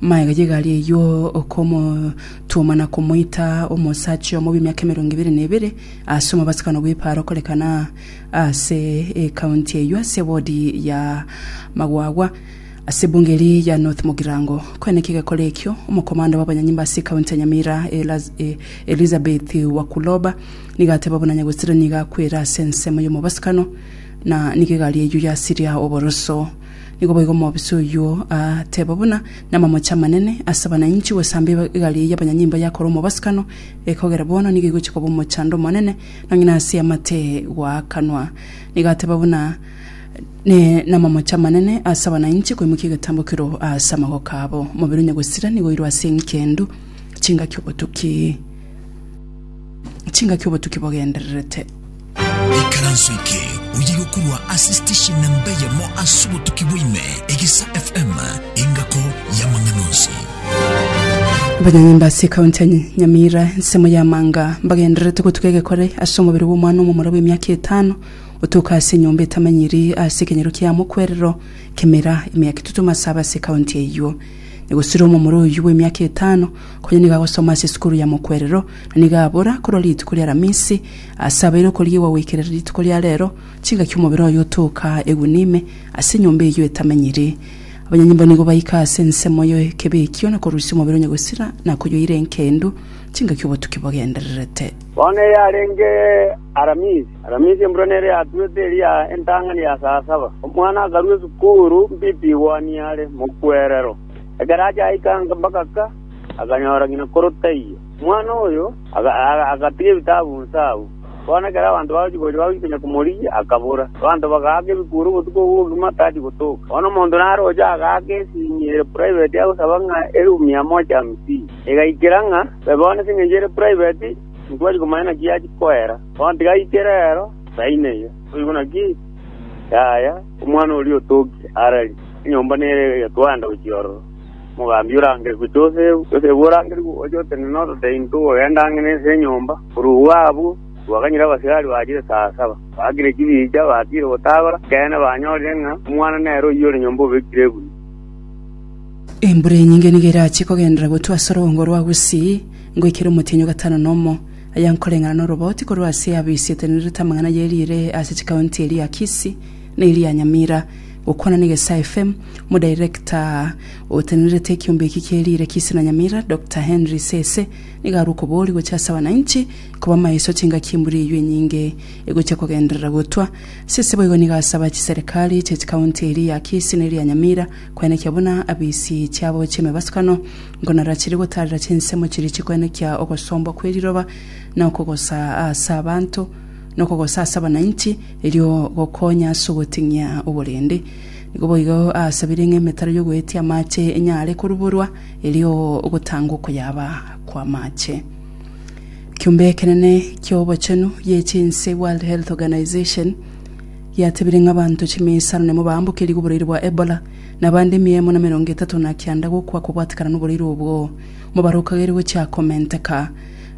Magega y'egari eyio okomotuoma na komoita omosacha omo bw'emiaka emerongo ebere na ebere ase omobasibano bw'epaaro okorekana ase ekaunti eyio ase ebodi ya magwagwa ase ebunge eri ya North Mugirango. Korende naki egekora ekio, omokomanda bw'abanyanyimba ase ekaunti ya Nyamira Elizabeth Wakuloba nigo ateba buna Nyagosira nigo akwera ase ensemo y'omobasibano na nigo egari eyio yasiria oboroso Nigo boigo omobisa oyio ateeba buna namamoche amanene ase abananchi gosamba egari eye y'abanyanyimbo yakore omobasikano, ekogera bono nigo egochia koba omochando omonene, nonya nase eamate goakanwa. Nigo ateeba buna namamoche amanene ase abananchi koimokia egetambo kero ase amagoko abo. Omobere onya gosira nigo oirwe ase engendu, chingaki obotuki chingaki obotuki bogendererete. Ikaranso eke oyige korwa ase station na mbeyemo ase obotuki bwaime Egisa FM engako y'amang'ana onsi. Abanyanyimba ase ekaunti ya Ny- Nyamira ensemo ya manga mbagendererete gotuka egekore ase omobere bw'omwana omomura bw'emiaka etano otoka ase enyomba etamanyiri ase ekenyero kia mokwerero kemera emiaka etutu masaba ase ekaunti eyio negosira omomura oyio bw'emiaka etano konya nigo agosoma ase esukuru ya mokwerero na nigo abora korwa rituko ria aramisi Asabeire okorigiigwa goikera rituko ria reero, chingaki omobere oye otooka egunia ime ase enyomba eyio etamenyiri. Abanyanyimbo nigo baika ase ensemo y'ekebe ekio na korusia omobere onye gosira na koyoira enkendu, chingaki obotuki bogendererete. Bono eyarenge Aramisi, Aramisi embura nere yatuete eria entang'ani ya saa saba, omwana akarua esukuru mbipi igwani are mokwerero. Ekero achaika mbagaka, akanyora ng'ina koro taiyo. Omwana oyo agatiga ebitabu inse agwo. Bono ekero abanto bagochia gocha bagochia konya komorigia, akabora. Abanto bagaaka ebikuuri obotuko obwo bogima tari gotoka. Bono omonto naroche agaaka esinyi ere private agosaba ng'a erumu mia moja hamsini. Egaikera ng'a, Be bono ase engencho ere private, intibwati komanya naki yachia koera. Bono tiga aikere ero, saini eyio. Boigo naki, yaya, omwana oria otokire, ararie, enyomba nere egetwaanda gochia ororo. Mogambi orangerigwe Josefu, Josefu orangerigwe ogocha otenene orotei intwe ogenda ang'e nense y'enyomba. Korw'igwo abwo, twaganyire abasigari bachire saa saba, baakire chibicha, batiire gotagora, ekeene, banyorire ng'a omwana nere oyio ore nyomba obekire egunia. Embura enyinge nigo erachie kogendera gotwa ase orogong'o rwa Gusii ngoikera omotienyi o gatano na omo, aya nkoreng'ana noroboti korwa ase abo isietenerete amang'ana ye riire ase chikaunti eria Kisii, Neri ya Nyamira, gokwana n'Egesa FM, Omodirekta otenerete ekiombe eki kie riire Kisii na Nyamira, Doctor Henry Sese, nigo arwe okobooria gochia ase abananchi koba maeso chingaki embura eyio enyinge egochia kogenderera gotwa. Sese boigo nigo asaba chiserekari chie chikaunti eria ya Kisii na eria Nyamira koenekia buna abisi chiabo chi'emebasukano nkonara chiri gotaarera chinsemo chiria chikoenekia ogosombwa kwe riroba na okogosa ase abanto nokogosa ase abananchi, erio gokonye ase ogoting'ia oborende. Nigo boigo asabire ng'a emetaro y'ogoetia amache enyare koruborwa, erio gotangwe okoyaba kw'amache. Ekiombe ekenene ki'obochenu gie chinse, World Health Organization, giatebire ng'a abanto chimia isano nemo baambokerigwe oboraire bwa Ebola, na abande emia emo na emerongo etato na kianda gokwa kobwatekana noboraire obwo, mobarokageire gochia komenteka.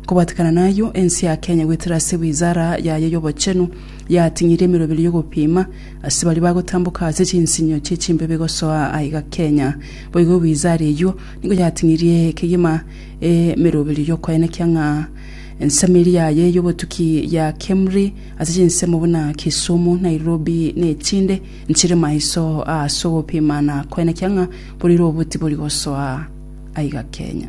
Kobatekana nayio, ense ya Kenya goetera ase wizara yaye y'obochenu yating'irie emeroberi y'ogopima ase baria bagotamboka ase chinsinyo chie chimbebe gosoa aiga Kenya. Boigo wizara eyio nigo yating'irie kegima emeroberi y'okoenekia ng'a ensemo eria yaye y'obotuki ya Kemri ase chinsemo buna Kisumu, Nairobi na echinde nchire maiso ase ogopima na koenekia ng'a borire obuti bori gosoa aiga Kenya.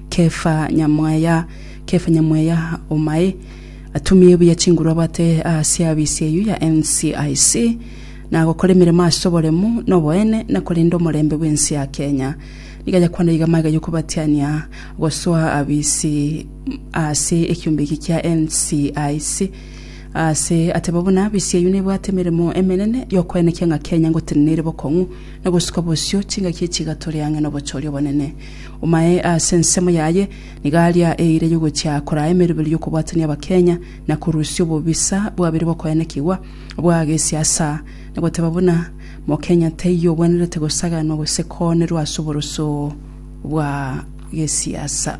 Kefa nyamwaya, Kefa nyamwaya omae, atumie buya chinguru abwate ase abisi eyio ya NCIC, na agokora emeremo ase oboremu, na oboene, na korenda omorembe bw'ense ya Kenya. Nigo ayakwana iga amaiga y'okobatiania gosoa abisi ase ekiombe eki kia NCIC ase ateba buna abisi eyio nebwate emeremo emenene y'okoenekia ng'a Kenya ngotenena ere bokong'u na gosuka bosio chingaki echiga tore ang'e nobochori obonene. Omaye ase ensemo yaye nigo aria eira yogochia koraa emeroberi y'okobwatania Abakenya na korusia obobisa bwabere bw'okoenekigwa bwa gesiasa na goteba buna Mokenya teiyo obwenerete gosaganwa gose koonerwa ase oboroso bwa gesiasa.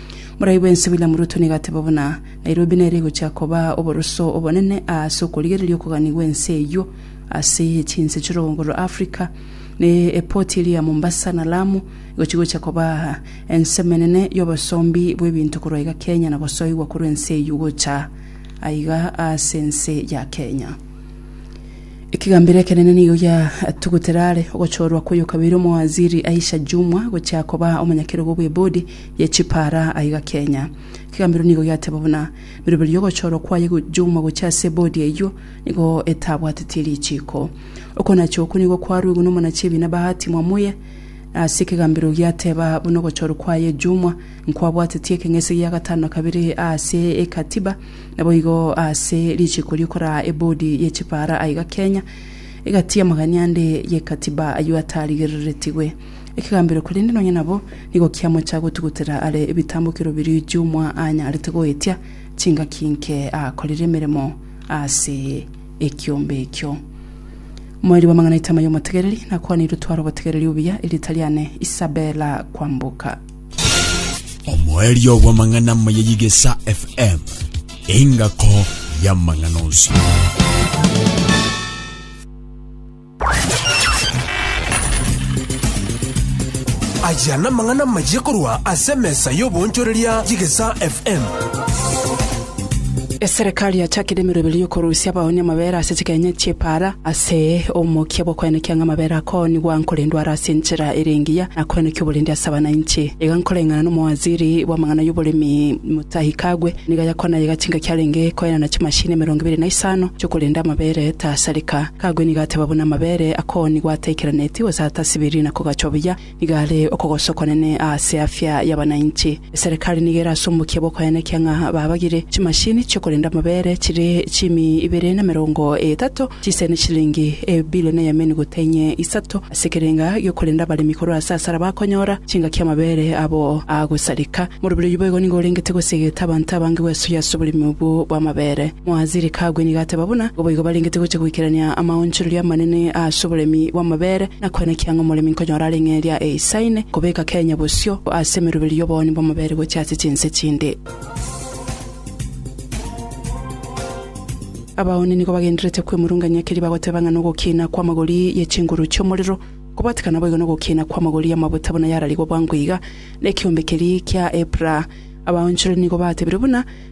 Morai bwensi William Ruto nigo ateba buna, Nairobi nere egochia koba oboroso obonene aase okorigereria okogani gw'ense eyio ase chinse chi'orogongo rwa Africa, na epoti eria ya Mombasa na Lamu egochia gocha koba ense emenene y'obosombi bw'ebinto korwa iga Kenya na gosoigwa korwa ense eyio gocha aiga aase ense ya Kenya. Ekegambero ekenene nigo giatugutera are ogochorwa kw'oyokabere omowaziri Aisha Jumwa gochia koba omonyakerogo bw'ebodi ye chipara aiga Kenya. Kegambero nigo giateba buna miroberi y'ogochorwa kwaye Juma gochia ase bodi eyio nigo etabwatetie richiiko. Okonacha okwo nigo kwaruigwe n'omonachie ebiina Bahati Mwamuye ase ekegambero giateba buna ogochorwa kwaye Juma nkwabwatetie ekeng'ese gia gatano na kabere ase ekatiba naboigo ase richiiko riokoraa ebodi ye chipara aiga Kenya egatiia amagania ande ye katiba ayio atarigereretigwe. ekegambero korende nonya nabo nigo kiamocha gotugutera are ebitambokero biria Jumwa anyarete goetia chingaki nke akorire emeremo ase ekiombe ekio. Moeri bw'amang'ana Itama y'omotegereri, nakwaneirwe tware obotegereri obuya, erieta riane Isabella Kwamboka. Omoerio bw'amang'ana amaya y'Igesa FM, engako y'amang'ana onsi. Aya namang'ana amayia korwa ase emesa y'oboonchoreria y'Egesaa FM. Eserekari yachakire emeroberi y'okorusia abaoni amabera ase chigenye chi'epaara ase omokia bw'okoenekia ng'a amabera akoonigwa nkorendwa are ase enchera ere engiya na koenekia oborindi ase abananchi. Iga nkoreng'ana n'omowaziri bw'amang'ana y'oboremi Mutahi Kagwe nigo yakwana iga chingaki arenge koenana chimashini emerongo ebere na isano chi'okorenda amabera etasareka. Kagwe nigo ateba buna amabere akoo nigo ataikeranetie gose atasibiri na kogachwa buya, nigo are okogoswa okwanene aase afya y'abananchi. Eserekari nigo ere ase omokia bw'okoyanekia ng'a babagire chimashini chi'okorenda amabere chire chiimi ibere na emerongo etato, chisire ne chilingi ebilioni eyemenu gotenye isato ase ekerenga gi'okorenda abaremi korwa ase asara bakonyora chingaki amabere abo agosareka. Morobiri oyio boigo nigo orengete gosegeta abanto abange gwesoyia ase oboremi obwo bw'amabere. Moaziri kagwe nigo ateba buna boigo barengete gochia goikerania amaonchoreria amanene ase oboremi bw'amabere, na kwena ki ang'e omoremi nkonyora are ng'eria eisaine, kobeka Kenya bosio ase emeroberi y'obooni bw'amabere gochia ase chinse chinde. Abaoni nigo bagendererete kwemurungania keria bagoteba ng'a nogokiina kw'amagori ye chinguru chi'omorero, kobwatekana boigo nogokiina kw'amagori y'amabuta buna yararigwe bwango iga nekeombe keria kia Epra. Abaonchoreria nigo batebire buna,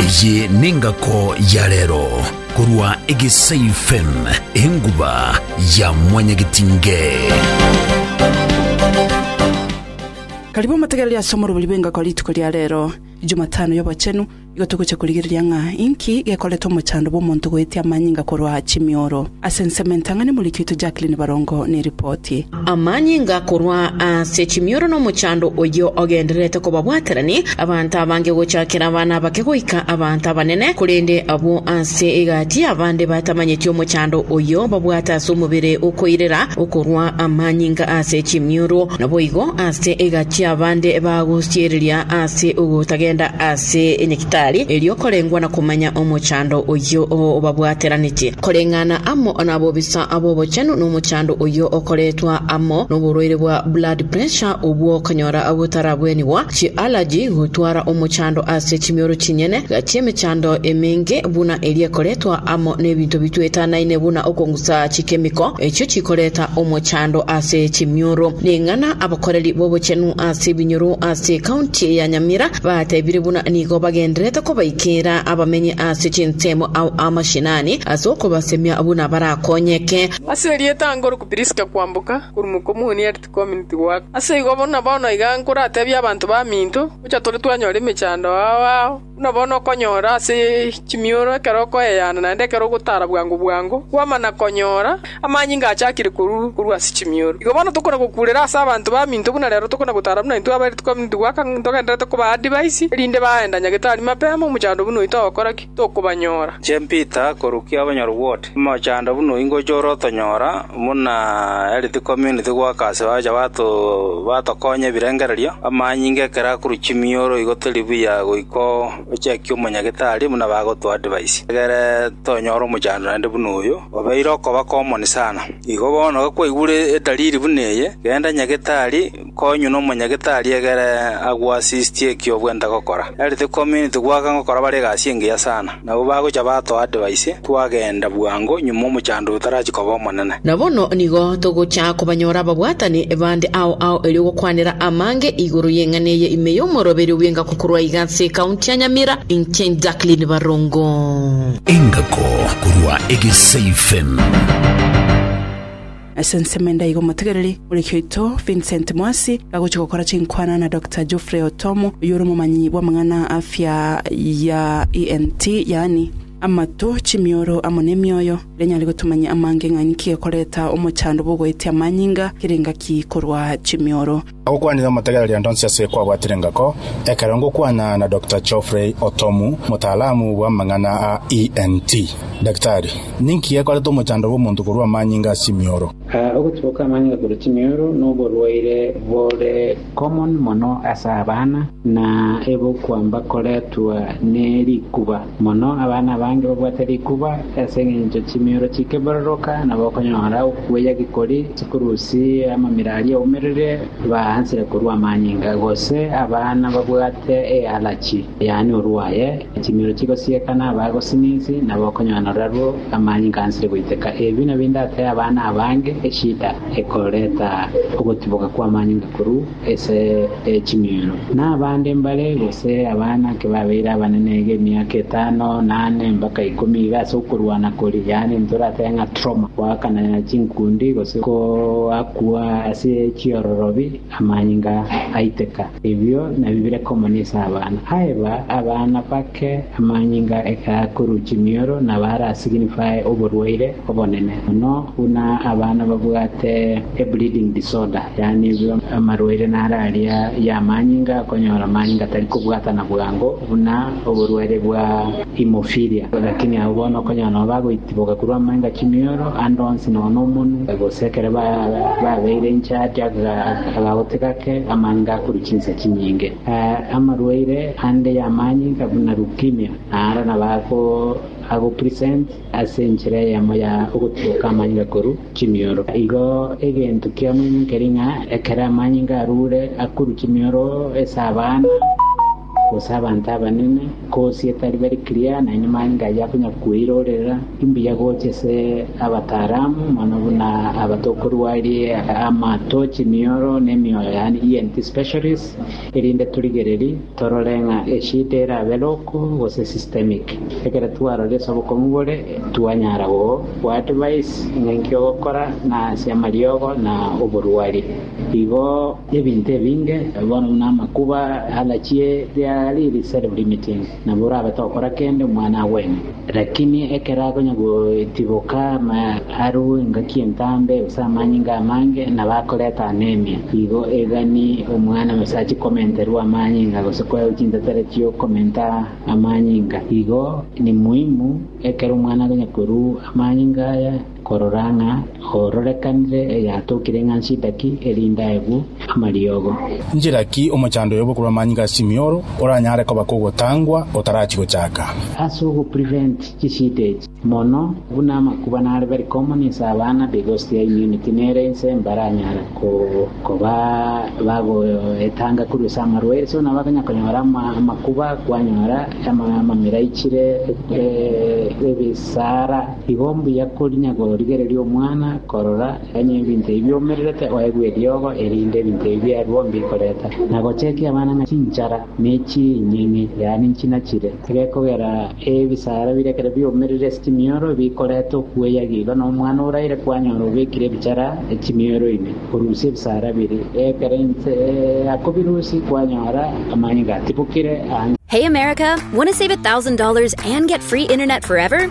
Eye nengako ya rero korwa Egesai FM, enguba ya mwanyagetinge. Karibu omotegereri ase omorobori bw'engako rituko ria rero, Jumatano y'obochenu, igo togocha korigereria ng'a inki gekoreta omochando bw'omonto goetia amanyinga korwa chimioro. Ase ensemo entang'ani morikio oito Jacqueline Barongo neripoti. Amanyinga korwa ase chimioro na omochando oyio ogendererete kobabwaterani, abanto abange gochakera abana abake goika abanto abanene, korende abwo ase egati abande batamanyeti omochando oyio babwate ase omobere okoirera okorwa amanyinga ase chimioro. Naboigo ase egati abande bagosiereria ase ogotagenda ase nyagitari erio korengwa na komanya omochando oyio obabwateraneti. Koreng'ana amo nabobisa ab'obochenu nomochando Naende oyio okoretwa amo noborwaire bwa blood pressure obwo konyora botarabwenigwa, chi'allergy, gotwara omochando ase chimioro chinyene, chi'emechando emenge buna eria ekoretwa amo nebinto bitwetanaine buna okongusa chikemiko echio chikoreta omochando ase chimioro. Ning'ana abakoreri bobochenu ase ebinyoro ase county ya Nyamira batebire buna nigo bagendererete kobaikera abamenyi ase chinsemo ao amashinani ase okobasemia buna barakonyeke. Ase erieta nkoroku Priska kwamboka korwa mokomuni erite kominiti goaka. Ase igo buna bono iga nkoratebie abanto baminto, gocha tore twanyora emechando ao ao, buna bono okonyora ase chimioro ekero okoeyeana naende ekero ogotara bwango bwango, kwamana konyora amanyinga achakire korwa korwa ase chimioro. Igo bono tokona gokurera ase abanto baminto buna rero tokona gotara buna intwe aberite kominiti goaka ntogenderete kobaa adivaisi, erinde baenda nyagetari mapema omochando buna oito ogokora ki? Tokobanyora. Inche Peter, korukia obonyoru bw'ote. Mochando buna oingocha ore otonyora buna Health Community goaka ase bacha batokonya ebirengererio, amanyinga ekero akorwa chimioro igo tori buya goika ochekie omonyagetari buna bagotoa advice. Egere tonyore omochando naende buna oyo obeire okoba common sana. Igo bono gakwaigure edalili buna eye genda nyagetari. Konywa n'omonyagetari egere agwo asistie eki obwenta gokora. Ere tikomineti goaka gokora bare egasi engiya sana. Nabo bagocha batoa advice, Twagenda bwango nyuma omochando otarachi koba omonene. Na bono nigo togocha kobanyora ababwatani bande ao ao erio gokwanera amange igoro y'eng'ana eye ime y'omoroberi obw'engako korwa iga ase ekaunti ya Nyamira, inche Jacqueline Barongo. Engako korwa Egesaifem. Ase ensemo ende aiga omotegereri moriki oito Vincent Mwasi gagochia gokora chinkwana na Doctor Geoffrey Otomo, oyio ore omomanyi bw'amang'ana a afya ya ENT, yaani amato, chimioro amo nemioyo, ere nyare gotumanyia amange ng'a ninki gekoreta omochando bw'ogoetia amanyinga kere engaki korwa chimioro. Agokwanire omotegereri onde onsi ase kwabwatire ngako, ekero ngokwana na Doctor Geoffrey Otomu, motaalamu bw'amang'ana a ENT. Daktari, ninki gekorete omochando bw'omonto korua amanyinga ase emioro? Ogotiboka amanyinga korwa chimioro noborwaire bore common mono ase abana, na ebokwa mbakoretwa ne rikuba. Mono abana abange babwate rikuba ase engencho chimioro chikebororoka, nabo okonyora okuya gikori chikurusi amamira aria aumerire, baansire korua amanyinga, gose abana babwate ealachi, yaani orwaye, chimioro chigosieka na abagosinisi, nabo okonyora narwo amanyinga ansire goiteka. Ebi nabi ndatee abana abange, eshida ekoreta ogotiboka kw'amanyinga korwa. ase ching'eero, na abande mbare, gose abana ki babeire abanene iga emiaka etano, na ane, mpaka ikomi iga ase okorwana koria, yaani ntoratebe ng'a trauma, goakana chinkundi, gose goakwa ase chiororobi, amanyinga aiteka. Ebio nabio bire common ase abana. Aeba abana bake amanyinga ekaakorwa chimioro na bare a signify oborwaire obonene mono buna abana babwate. Ebleeding disorder, yaani amarwaire naro aria y'amanyinga akonyora amanyinga atari kobwatana bwango buna oborwaire bwa hemophilia. Lakini abwo bono okonyora nabo bagoitiboka korwa amanyinga chimioro ande onsi nonya nomonu, gose ekero babeire incharge agagote gake amanyinga akorwa chinsa chinyinge. Amarwaire ande y'amanyinga buna leukemia, naro nabo ago present. Ase enchera eyemo ya ogotuboka amanyinga korwa chimioro. Igo egento ki'omonyo keri ng'a ekero amanyinga arure akorwa chimioro ase abana, gose abanto abanene, kosie tari bari clear, naende amanyinga ayio akonya kweirorera. Imbuya gocha ase abataramu mono buna aba tokorua aria amato, chimioro, na emioyo, yaani ENT specialists. erinde torigererie torore ng'a eshida erabe roko gose systemic. Ekero twaroria ase obokong'u bore, twanyara goadvise ng'a enki ogokora na ase amariogo na oborwari. Igo ebinto ebinge, bono buna amakuba, allergy, there are really serio-limiting. nabo orabe tokora kende omwana agwene. Lakini ekero akonya goetiboka arue engaki entambe gose amanyinga amange, nabo akoreta anemia. Igo egani omwana gose achie komenterwa amanyinga gose koewa chintetera chiokomenta amanyinga. Igo nimuhimu ekero omwana akonya korua amanyinga aya, korora ng'a oororekanire eyatokire ng'a nshitaki, erinde aegwe amariogo. Nchera ki omochando oyobo korwa amanyinga a Simioro oranyare koba kogotangwa otarachia gochaka? Ase ogoprevent chisida echi, mono buna amakuba nare very common ase abana, the ghost ya immunity nere inse mbaranyare koba bagoetanga korwa ase amarwaire so nabo bakonyara konyora amakuba kwanyora amamera aichire ebisara. Igo mbuya korinya gorigereria omwana korora onye ebinto ebi bioumererete oegwe eriogo erinde ebinto ebi biarwo mbikoreta, na gochekia abana ng'a chinchara ne chinying'e, yaani nchinachiire. Egekogera ebisaara biria ekero bioumerire ase chimioro bikoreta okueya iga nomwana oraire kwanyora obekire ebichara ase chimioro ime orusie ebisaara biria, ekero inse akobirusia kwanyora amanyinga atibokire anga. Hey America, want to save $1,000 and get free internet forever?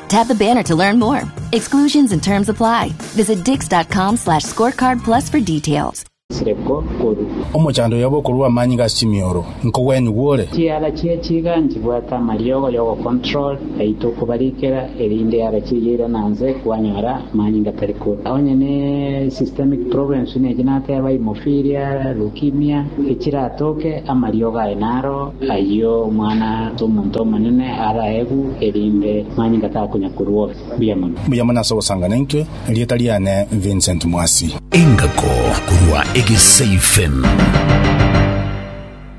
Tap the banner to learn more. Exclusions and terms apply. Visit dix.com slash scorecard plus for details. chireko koru. Omochando oyobe okorua amanyinga ase chimioro, nkogwenyu gwore. Chiara chia chiga nchibwate amariogo y'ogocontrol yaito okobarikera erinde yara chiria ira nanze kwanyora amanyinga tari koru. Onye ne systemic problems buna echi nateba hemophilia, leukemia, echiratoke amariogo aye naro ayio omwana ase omonto omonene araegwe. erinde manye ngataka konya korua ore. Mbuya mono. Mbuya mono ase ogosanga naintwe, erieta riane Vincent Mwasi. Engako korwa Egeseifen.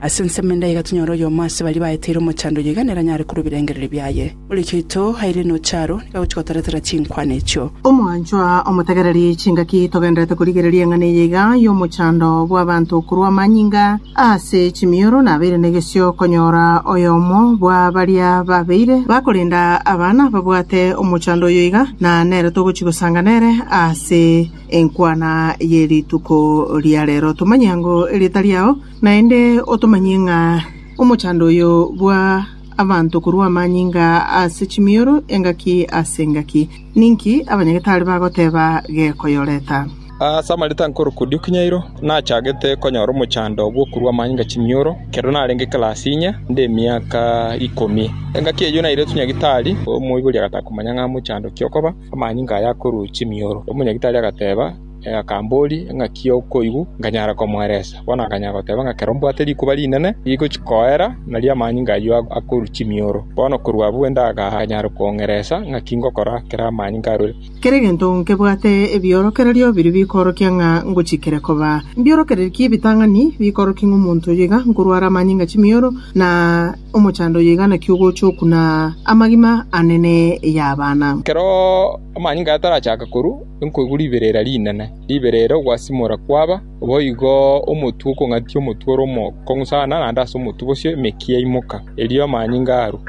Ase ensemo endai iga tonyore oyomo ase baria baeteire omochando oyo iga nere anyare korua ebirengererio biaye. Morekia oito airire nocharo, nigo agochia gotaratara chinkwana echio. Omwanchwa omotegereri, chingaki togenderete korigereria eng'ana eye iga y'omochando bw'abanto korwa amanyinga? Ase chimioro nabeire negesio konyora oyomo bwa baria babeire bakorenda abana babwate omochando oyo iga, na nere togochia gosanga nere ase enkwana ye rituko ria rero. Tomanyia ng'o erieta riao, naende otomanyie ng'a omochando oyo bwa abanto korwa amanyinga ase chimioro engaki ase engaki. Ninki abanyagetari bagoteba gekoyoreta? Ase amarita nkoruku Diukinyairo nachagete konyora omochando bw'okorua amanyinga chimioro ekero narenge ekelasi inye nde emiaka ikomi. Engaki eyio nairetwe nyagitari, omoibori agataka komanya ng'a mochando ki okoba amanyinga aya akorua chimioro. Omonyagitari agateba akamboria engaki okoigwa nkanyara komoeresa. Bono akanyara goteba ng'a ekero mbwate rikuba rinene rigochia koera nario amanyinga ayio akorua chimioro. Bono korwa abwo endagaka akanyara kong'eresa ng'aki ngokora ekero amanyinga arure. Kera egento nkebwate ebiorokererio biria bikoorokia ng'a ngochikire koba. Mbiorokereretie ebitang'ani bikoorokia ng'a omonto oyo iga nkorware amanyinga chimioro, na omochando oyo iga naki ogocha oku, na amagima ane ney'abana. Ekero amanyinga aya tarachaka korwa, nkoigwa riberera rinene, riberera ogwasimora kwaba, boigo omotwe okong'atia omotwe ore omokong'u sana naende ase omotwe bosio emeki yaimoka, erio amanyinga arwa.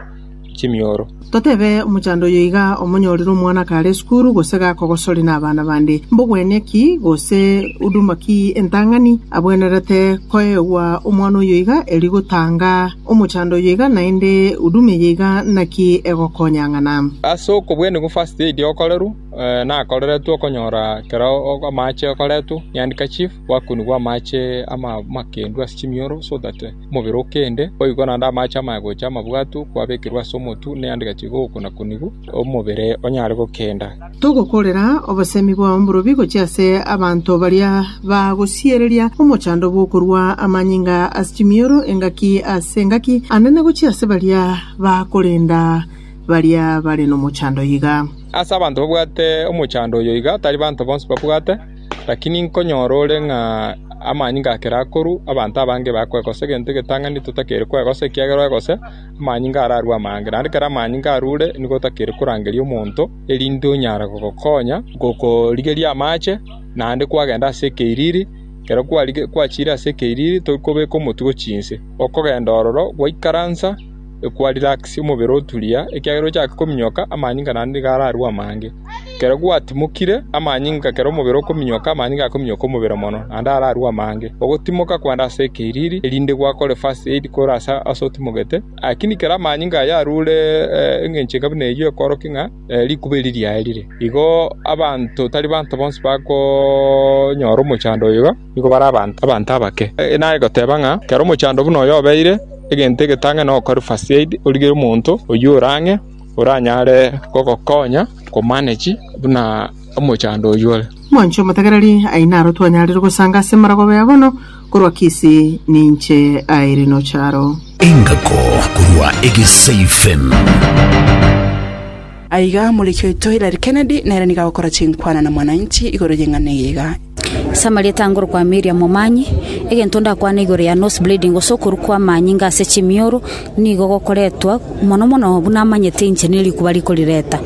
chimioro. Totebe omochando oyo iga, Omonyorire omwana akare esukuru, gose gakogosori nabana bande, mbogwenia ki gose huduma ki entang'ani abwenerete koegwa omwana oyo iga erio gotanga omochando oyo iga, naende huduma eye iga naki egokonya ng'ana? Ase okobwenigwa first aid okorerwe nakoreretwe okonyora ekero amache okoretwe niandika chief gwakunigwa amache amakendu ase chimioro so that Omobere o kende, boigo naende amaache amagocha amabwatu kwabekirwe ase omotu, ne ande gachiika ogokunakunigu omobere onyare gokenda. Togokorera obosemi bwa omborobi gochia ase abanto baria bagosiereria omochando bw'okorua amanyinga ase chimioro engaki ase engaki, ande na gochia ase baria bakorenda baria bare nomochando iga. Ase abanto babwate omochando oyo iga, tari banto bonsi babwate. Lakini nkonyora ore ng'a amanyinga akere akoruu, abanto abange bakwegosa egento egetang'ani totakeire kwegosa, ekiagera oegose, amanyinga ararue amange. Naende ekero amanyinga arure, nigo otakeire korangeria omonto, erinde onyare gogokonya gokorigeria amache, naende kwagenda ase ekeiriri. Ekero kwarigeire kwachiire ase ekeiriri, tori kobeka omotwe gochia inse, okogenda ororo gwaikaransa. ekwarelaxie omobere oturia, ekiagera ochake kominyoka amanyinga naende nigo ararue amange. Ekero gwatimokire amanyinga ekero omobere okominyoka amanyinga akominyoka omobere mono naende ararue amange. Ogotimoka kwande ase ekeiriri erinde gwakore first aid kore ase ase otimogete lakini ekero amanyinga ayio arure eng'encho enga buna eyio ekworokia ng'a rikuba eri riaye rire. Igo abanto tari banto bonsi bakonyora omochando oyo iga. nigo bare abanto abake. Naye goteba ng'a kera omochando buna oyo obeire egento egetange nogokora first aid, origere omonto oyio ore ang'e oranyare gogokonya komanage buna omochando oyio ore. Mwanche omotegereri, aye naro twanyarire gosanga ase marogoba ya bono, korwa Kisi ninche aire nocharo. Engako korwa Egesaifem. Aiga omoriki oito Hillary Kennedy nere nigo agokora chinkwana na Mwananchi igoro y'eng'ana eye iga. Ase amarieta ange orokwa Miriam Momanyi, egento ndakwane igoro ya nose bleeding gose okorwa kwa amanyinga ase chimioro nigo gokoretwa mono mono buna amanyete inche nerikuba rikorireta.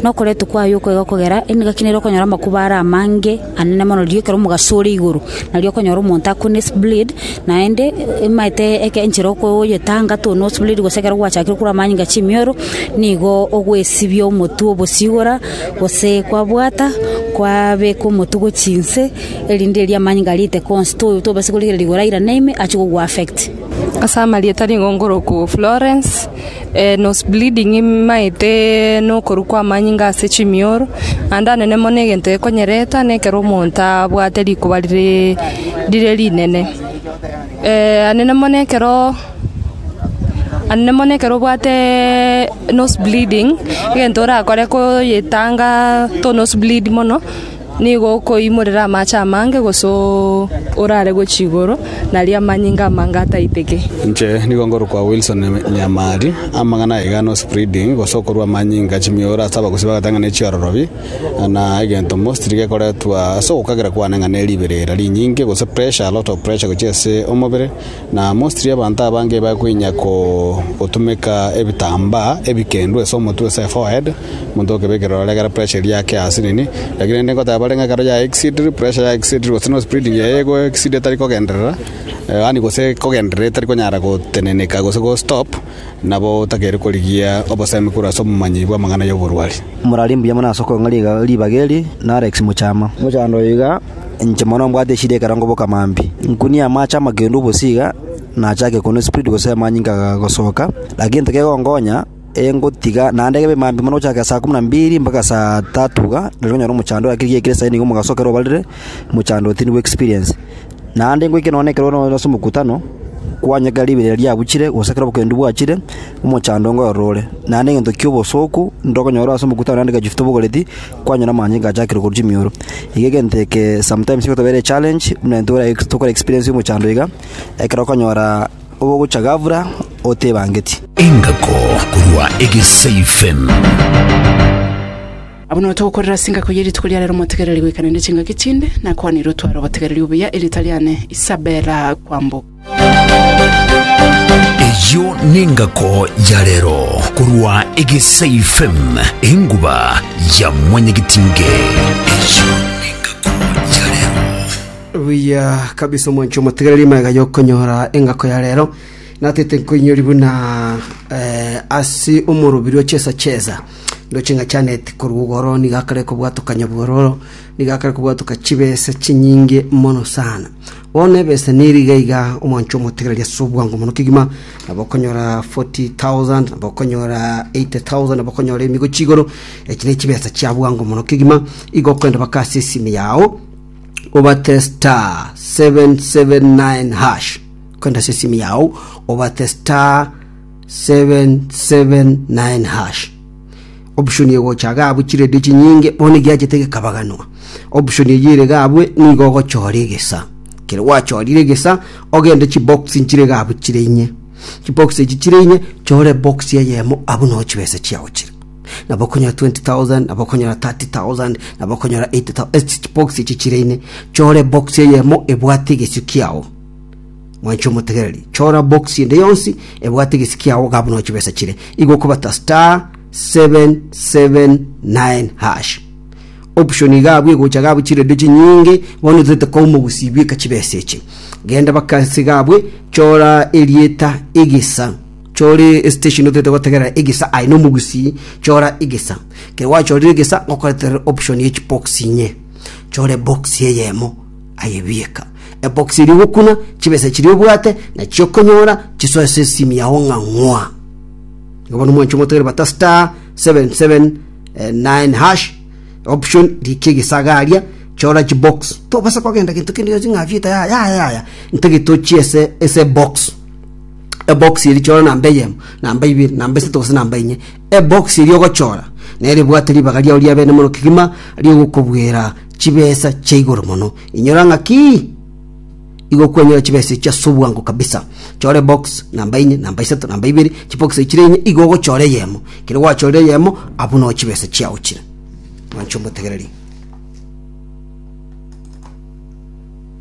Nokoretwa kwaye okoiga okogera, ere nigaki nere okonyora amakuba are amange. anene mono riria ekero omogaso ore igoro, nario okonyora omonto akwo ne spleed, naende emaete eke enchera okoyetanga too no spleed gose ekero gwachakire okura amanyinga chimioro, nigo ogwesibia omotwe obosie igoro, gose kwabwata, kwabeka omotwe gochia inse, erinde erio amanyinga aria aite konsi to- tobasa korigereria igoro airane ime achia kogu affect. Ase amarieta nigo nkoroku Florence. Nose bleeding imaete nokorwa kwa amanyinga ase chimioro, naende anene mono egento gekonyereta na ekero omonto abwate rikoba rire rire rinene. anene mono ekero anene mono ekero obwateeee nose bleeding egento orakore koyetanga to nose bleed mono. Nigo okoimorera amache amange gose orare gochia igoro, na aria amanyinga amange ataiteke. Inche nigo ngorokwa Wilson Nyamari. Amang'ana aiga no spreading gose okorua amanyinga chimioro ase abagusi bagoteba ng'a ne chiororobi, na egento mostly gekoretwa ase ogokagera kwane ng'a ne riberera rinyinge gose pressure a lot of pressure gochia ase omobere. Na mostly abanto abange bakoinyia gotumeka ebitambaa ebikendu ase omotwe, ase eforehead, omonto okebekera ororo ekero pressure eria yake ase nini. Lakini rende nkoteba bare ng'a ekero ya exceed, pressure ya exceed gose no spreading yaye ego exceed etari kogenderera, yaani gose ekogenderera etari konyara goteneneka gose go stop, Nabo otagere korigia obosemi korwa ase omomanyi bw'amang'ana y'oborwari. Morare mbuya mono ase okong'a ribaga eri, na Alex mochama. Mochando oyo iga, inche mono mbwate eshida ekerango boka maambia. Nkunie amache amakendu obosie iga, nachake koonwa espriti gose amanyinga agasoka. Lakini gento kegonkonya, ee ngotiga naende kebe maambia mono gochaka saa kumi na mbili mpaka saa tatu iga, nari konyora omochando, lakini rigiya ekero saa inye nigo mogasoka ere obarire, mochando otindwe experience. Naende ngoike noone ekero ore ase omokutano, kwanyeka ekero riberia riabuchire, gose ekero obokendu bwachire, omochando ngorore ore. Naende egento ki'obosooku ndokonyora ore ase omokutano naende gachufte obogoreti, kwanyora amanyinga achakire korwa chimioro. Iga egento eke sometimes egotobera echallenge buna intwe boraye tokore experience omochando iga, ekero okonyora obogocha ghafla otebangeti. Engako korwa Egesaifem. Abwo nigo togokorera ase engako ye rituko ria rero motegereri goika naende chingaki chinde nakwaneirwe tware obotegereri obuya erieta riane Isabella Kwamboka. Eyio nengako ya rero korwa Egesae FM enguba ya mwanyagitinge. Eyio nengako ya rero. buya kabisa omwancho omotegereri maiga yokonyora engako ya rero natete nkoinyori buna eh, ase omorobiri ochesa chesa Indoche inga chianeti korwa igoro nigo akare kobwatokania bwororo, nigo akare kobwatoka chibesa chinyinge mono sana. Bono ebesa neri iga iga omwancho omotegereri ase obwango mono kegima, nabo okonyora 40,000, nabo okonyora 80,000, nabo okonyora emigo chigoro, echi ne chibesa chia bwango mono kegima, igo okogenda baka ase esimi yao, obate star 779 hash, okogenda ase esimi yao, obate star Option egocha iga abwo chiredio chinyinge bono egiachete gekabaganwa. Option eyio ere iga abwo nigo ogochora egesa. Ekero gwachorire egesa, ogende chibox nchire iga abwo chire inye. Chibox echi chire inye, chora ebox eyemo abwo noo chibesa chiao chire. Nabo okonyora 20,000, nabo okonyora 30,000, nabo okonyora 80,000 ase chibox echi chire inye. Chora ebox eyemo ebwate egesio kiao. Mwanche omotegereri, chora bokisi ende yonsi ebwate egesi kiao iga buna ochibesa chire. Igo okobata star 779 hash. Option iga abwo egocha iga abwo chiredio chinyinge bono torete kouma gusibia eka chibesa echi. Genda baka ase iga abwo chora erieta egesa chore estation otorete gotegerera egesa aye nomogusi chora egesa kero gwachorire egesa gokoretere option ye chibokisi inye chore bokisi eyemo ayebieka ebokisi eria ogokuna chibesa chiria obwate nachio okonyora chisoe ase esimu yao ng'a ng'wa igo bono mwanche omotegere bata star 779 hash option rikia egesagaria chora chibox tobasa kogenda gento kende gionsi ng'a fieta yaya yaya yaya ntege tochie ase ase box ebox eri chora namba eyemo namba ibere namba isato gose namba inye Ebokisi ri'ogochora neribwate ribaga riao ri'abenemoro kegima ri'ogokobwera chibesa chia igoro mono. Inyora ng'aki igokwenyora chibesa echi ase obwango kabisa. Chora ebokisi namba inye, namba isato, namba ibere, chibokisi echi chire inye igo ogochora eyemo. Ekero gwachorire eyemo, abwo noo chibesa chiao chire. Mwanche omotegereri.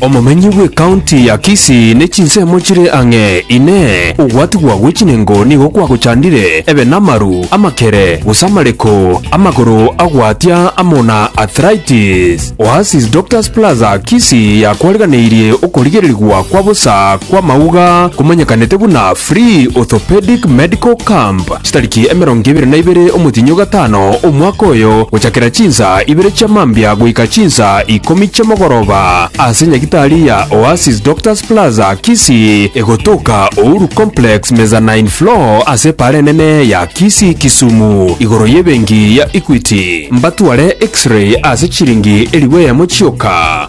Omomenyi bw'ekaunti ya Kisii ne chinsemo chire ang'e. Inee! Ogwatigwa gwe chinengo nigo kwagochandire ebe namaru, amakere, gose amareko, amagoro agwatia amo na arthritis? Oasis Doctors Plaza Kisii yakwariganeirie okorigererigwa kwa bosa kw'amauga komenyekanete buna Free Orthopedic Medical Camp. Chitariki emerongo ebere na ibere omotienyi o gatano, omwaka oyo, gochakera chinsa ibere chia mambia goika chinsa ikomi chi'omogoroba, ase nyagitari ya Oasis Doctors Plaza, Kisii, egotoka Uhuru Complex, mezzanine floor, ase epaara enene ya Kisii, Kisumu, igoro y'ebenki ya Equity. Mbatware X-ray ase chiringi elifu eyemo chioka.